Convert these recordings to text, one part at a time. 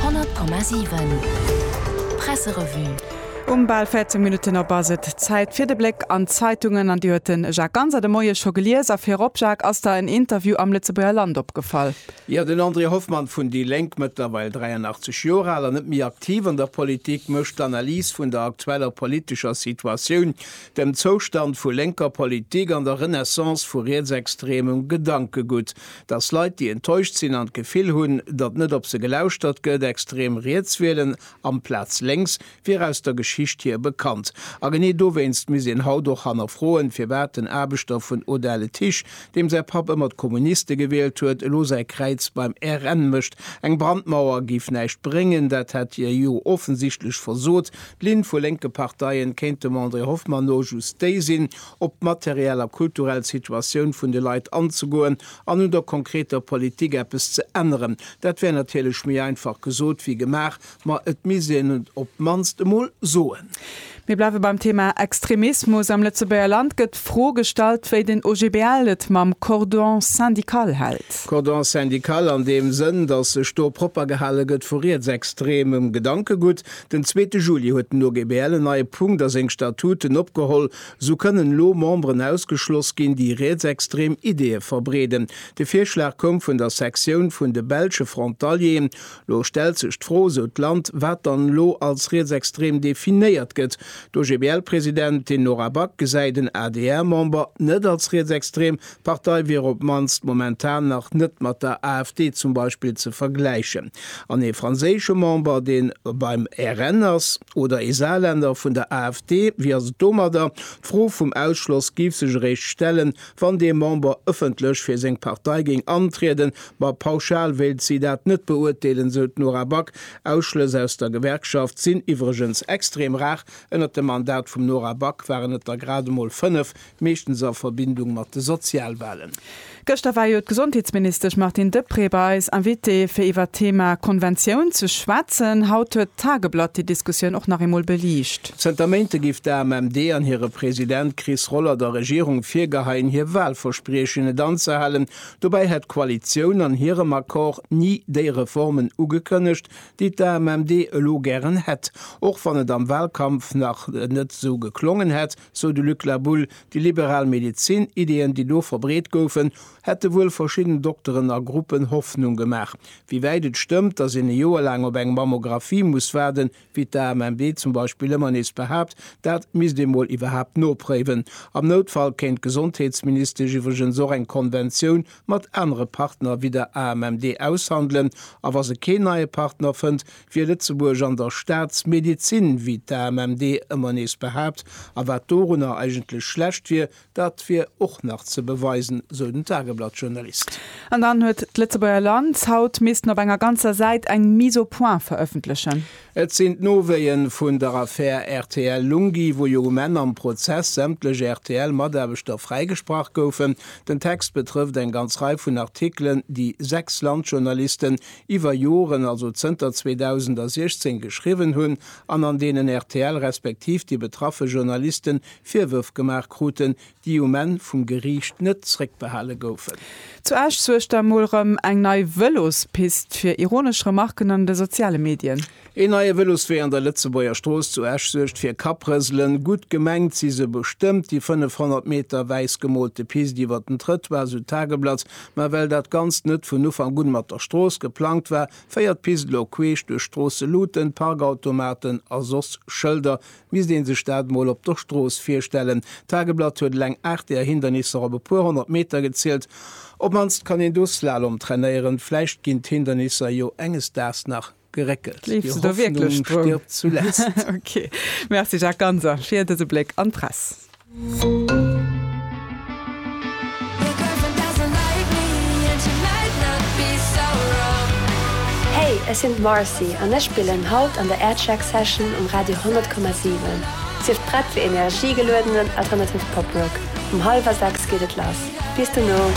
100,7 Presserevue. Um bal 14 Minutten op ass et Zäit fir de Bléck an d'Zeitungen an déi huet de Jacques Ganser de Moie scho gelies. A virop, Jacques, ass der en Interview am Lëtzebuerger Land opgefall. Jo, den André Hoffmann vun déi Lénk, mëttlerweil 83 Joer al an net méi aktiv an der Politik, mécht d'Analys vun der aktueller politescher Situatioun, dem Zoustand vu lénker Politik an der Renaissance vu rietsextremem Gedankegutt. Dass Leit, déi enttäuscht sinn an d'Gefill hunn, datt net op se gelauschtert gëtt, extrem riets wielen amplaz lénks, wier aus der Geschicht hier bekannt. A genee dowéinst misst een haut och hannerfroen, firwat den Aarbechter vun Odaletisch, deem säi Papp ëmmer d'Kommuniste gewielt huet, elo säi Kräiz beim RN mécht. Eng Brandmauer géif näischt bréngen, dat hätt hie jo offensichtlech versot. D'Linn vu lénke Parteien kéint dem André Hoffmann no just déi sinn, op d'materiell a kulturell Situatioun vun de Leit anzegoen an un der konkreter Politik eppes ze änneren. Dat wär natierlech méi einfach gesot wéi gemaach, ma et misst een et op d'mannst emol soen. Mir bleiwe beim Thema Extremismus. Am Lëtzebuerger Land gëtt d'Fro gestallt, wéi den OGBL et mam Cordon syndical hält. Cordon syndical an deem Sënn, datt sech do propper gehale gëtt vu rietsextremem Gedankegutt. Den zweete Juli huet den OGBL en neie Punkt a seng Statuten opgeholl, Sou kënnen elo Memberen ausgeschloss ginn, déi rietsextrem Ideeë verbreeden. De Virschlag koum vun der Sektioun vun de belsche Frontalieren. Lo stellt sech d'Fro, sou d'Land, wat dann elo als rietsextrem definéiert gëtt. D'OGBL-Presidentin Nora Back gesäit en ADR-Member net als rietsextrem, D'Partei wier op d'mannst momentan nach net mat der AfD zum Beispill ze vergläichen. An ee franséische Member, dee beim RN ass, oder ee Saarländer vun der AfD, wéi ass et domadder? D'Fro vum Ausschloss géif sech eréischt stellen, wann dee Member ëffentlech fir seng Partei géing antrieden. Ma pauschal wéilt si dat net beurteelen, sou d'Nora Back. Ausschlëss aus der Gewerkschaft sinn iwwregens extrem rar. Ënnert dem Mandat vum Nora Back waren et der grad emol fënnef, Meeschtens a Verbindung mat de Sozialwalen. Gëschter war jo d'Gesondheetsministesch Martine Deprez bei eis Invité fir iwwert d'Thema Konventioun ze schwätzen. Haut huet d'Tageblatt déi Diskussioun och nach eemol beliicht. Zënter Méinte géif d'AMMD an hire President Chris Roller der Regierung virgeheien hir Walverspriechen net anzehalen. Dobäi hätt d'Koalitioun an hirem Accord ni déi Reformen ugekënnegt, déi d'AMMD elo gären hätt. Och wann et am Walkampf nach net esou geklongen hätt, Sou de Luc Labulle, déi liberal Medezin, Ideeën, déi do verbreet goufen, hätte wuel verschidden Dokteren a Gruppen Hoffnung gemaach. Wéi wäit et stëmmt, datt een e Joer laang op eng Mammographie muss waarden, wéi d'AMMD zum Beispill ëmmer nees behaapt, dat misst ee mol iwwerhaapt nopréiwen. Am Noutfall kéint d'Gesondheetsministesch iwwregens och eng Konventioun mat anere Partner wéi der AMMD aushandelen. A wa se keen neie Partner fënnt, Wier Lëtzebuerg an der Staatsmedizin, wéi d'AMMD ëmmer nees behaapt, a wat dorunner eigentlech schlecht wier, dat wier och nach ze beweisen, sou den Tageblatt-Journalist. An dann huet d'Lëtzebuerger Land haut missten op enger ganzer Säit eng Mise au point verëffentlechen. Et sinn d'Nowéie vun der Affär RTL-Lunghi, wou jo um Enn am Prozess sämtlech RTL-Mataarbechter fräigesprach goufen. Den Text betrëfft eng ganz Rei vun Artikelen, déi sechs Landjournalisten iwwer Joren, also zënter 2016, geschriwwen hunn an an deenen rtl respektiv déi betraffe Journalisten Virwërf gemaach kruten, déi um Enn vum Geriicht net zréckbehale goufen. Zu Esch suergt da mol rem eng nei Vëlospist fir ironesch Remarken an de soziale Medien. Een neie Vëloswee an der Lëtzebuerger Strooss zu Esch suergt fir Kapprëselen. Gutt gemengt si se bestëmmt, déi 500 Meter wäiss gemoolte Pist iwwer den Trëttoir, sou d'Tageblatt. Mä well dat Ganzt net vun Ufank un mat der Strooss geplangt war, féiert d'Pist elo queesch duerch Stroosseluten, Parkautomaten a soss Schëlder. Misst ee sech dat mol op der Strooss virstellen. D'Tageblatt huet eleng 8 där Hindernisser op e puer honnert Meter gezielt. Op d'mannst kann een do Slalom trainéieren. Vläicht ginn d'Hindernisser jo enges Daags nach Geréckelt. Gleefs de do wierklech drun? Ok. Merci Jacques Ganser fir dëse Bléck an d'Press. Hey, ech sinn d'Marcy an ech spillen haut an der Aircheck Session um Radio 100,7. Sief prett fir energiegeluedenen alternative Poprock. Um hallwer 6 geet et lass. Bis dono!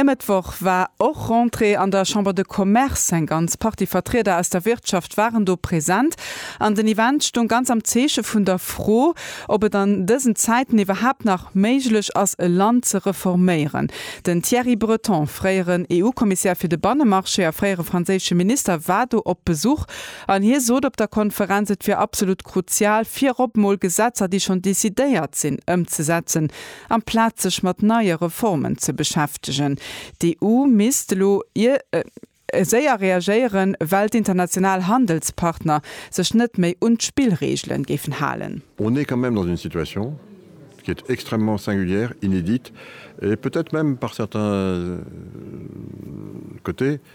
E Mëttwoch war och Rentrée an der Chambre de Commerce. Eng ganz Partie Vertrieder aus der Wirtschaft waren do present an den Event stoung ganz am Zeeche vun der Fro, ob et an dësen Zäiten iwwerhaapt nach méiglech ass, e Land ze reforméieren. Den Thierry Breton, fréieren EU-Kommissär fir de Bannemarché a fréiere franséische Minister, war do op Besuch. An hie sot op der Konferenz, et wier absolut kruzial, virop emol Gesetzer, déi schonn decidéiert sinn, ëmzesetzen, amplaz sech mat neie Reformen ze beschäftegen. D'EU misst elo séier reagéieren, well d'international Handelspartner sech net méi un d'Spillregele géifen halen. On est quand même dans une situation qui est extrêmement singulière, inédite et peut-être même par certains côtés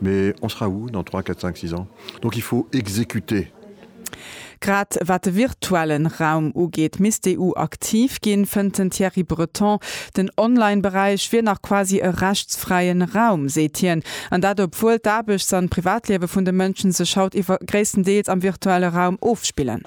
Mais on sera où dans trois, quatre, cinq, six ans? Donc il faut exécuter. Grad wat de virtuellen Raum ugeet, misst d'EU aktiv ginn, fënnt den Thierry Breton. Den Online-Beräich wier nach quasi e rechtsfräien Raum, seet hien. An dat obwuel d'Aarbechts an d'Privatliewe vun de Mënschen sech haut iwwer gréisstendeels am virtuelle Raum ofspillen.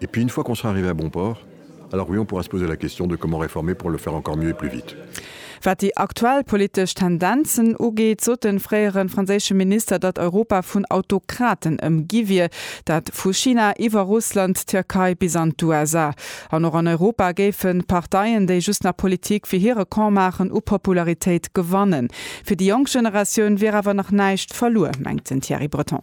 Et puis une fois qu'on sera arrivé à bon port, alors oui on pourra se poser la question de comment réformer pour le faire encore mieux et plus vite. Wat déi aktuell politesch Tendenzen ugeet, sot de fréiere franséische Minister, datt Europa vun Autokraten ëmgi wier, dat vu China iwwer Russland, d'Tierkei bis an d'USA. An och an Europa géifen d'Parteien, déi just nach Politik fir hire Camp maachen, u Popularitéit gewannen. Fir déi jonk Generatioun wier awer nach näischt verluer, mengt den Thierry Breton.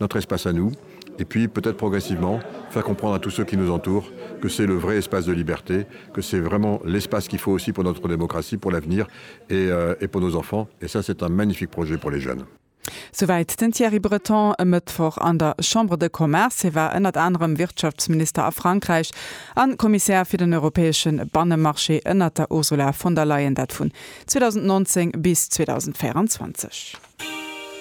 notre espace à nous et puis peut-être progressivement faire comprendre à tous ceux qui nous entourent que c'est le vrai espace de liberté, que c'est vraiment l'espace qu'il faut aussi pour notre démocratie, pour l'avenir et et pour nos enfants et ça c'est un magnifique projet pour les jeunes. Souwäit den Thierry Breton e Mëttwoch an der Chambre de Commerce. Hie war ënnert anerem Wirtschaftsminister a Frankräich a Kommissär fir den europäesche Bannemarché ënnert der Ursula von der Leyen, dat vun 2019 bis 2024.